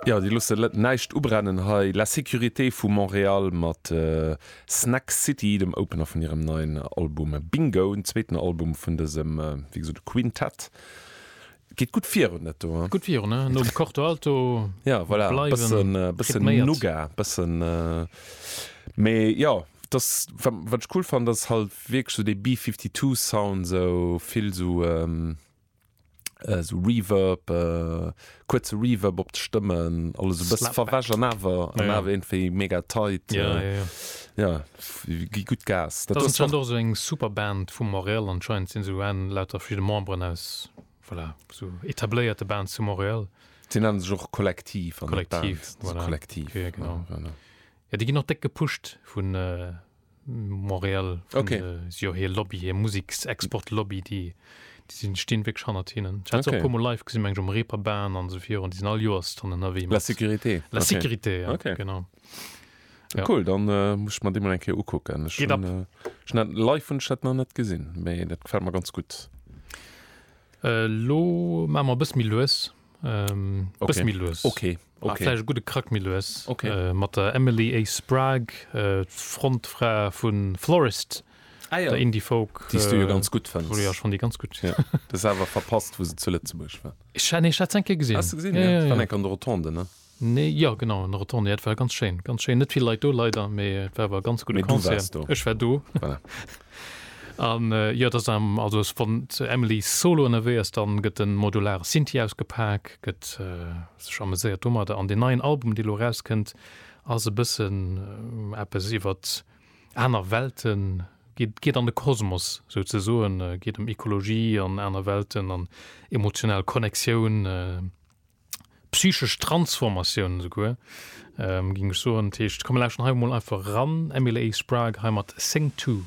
Jo, déi loosse näischt ubrennen hei. La Sécurité vu Montréal mat Snack City, dem Opener vun hirem neien Album Bingo, den zweeten Album vun dësem, wéi gesot, Quintett. Geet gutt virun, dat do. Gutt virun, ne? Nom Corto Alto bleiwen rhythméiert. Bëssen, mee jo, dass, wat ech cool fannen, dass halt wierklech esou dee B-52-Sound, esou vill esou. esou Reverb, kuerze Reverb op d'Stëmmen, alles e bësse verwäsch an awer an awer iergendwéi mega tight. Jo, jo, jo. Jo, gi gutt Gas. Dat ass anscheinend och esou eng Superband vu Montréal, anscheinend sinn esou en lauter verschidde Memberen aus, voilà, esou etabléierte Bands zu Montréal. Déi nennen sech och Kollektiv an net Band, Kollektiv, voilà, Kollektiv, ja, genau. Jo, genau. Jo, déi ginn och déck gepusht vun. Montréal vun okay. de, si jo hir Lobby, hir Museksexport-Lobby, déi déi sinn, stinn wierklech hannert hinnen. Ech hat se och e Okay. puer mol live gesinn, meng ech um Reeperbahn an esou virun, déi sinn all Joers dann ënnerwee La mat Sécurité. La Okay. Sécurité, ja, Okay. genau. Ja. Cool, dann äh, muss ech mer déi mal eng Kéier ukucken. Ech Geht hunn, ab. äh, ech hunn dat live hunn ech dat nach net gesinn, mee dat gefält mer ganz gutt. Äh, lo maache mer e bësse méi lues, Ähm, okay. Bësse méi lues. Okay. Ah, okay. Fläch gute Krack méi lues. Okay. Äh, mat der Emily A. Sprague, äh, d'Frontfra vun Florist. Ah, ja. Der Indie Folk. Dies du jo äh, ganz gut fënns. Wo du ja schon die ganz gut. Ja. Das awer verpasst, wo se zu Lëtzebuerg war. Ich, nee, ich hat es enke gesinn. Hast du gesinn? Ja, ja, ja. Dann enke an der Rotonde, ne? Nee, jo genau, en Retourné, jo et war ganz schéin, ganz schéin, net vill Leit do leider, mee et war awer e ganz gudde Concert, ech war do. Voilà. An jo et ass am, also es wann d'Emily solo ënnerwee ass, dann gëtt en modulare Synthi ausgepak, gëtt sech ameséiert domadder. An deen neien Album dee lo erauskënnt ass e bëssen eppes iwwert aner Welten, geet geet an de Kosmos sou ze soen, geet ëm Ekologie an aner Welten an emotional Connectioun. psychesch Transformatioun esouguer, géing ech soen. Dat heescht, komm mir lauschteren hei emol einfach eran, Emily Sprague hei mat Sing Two.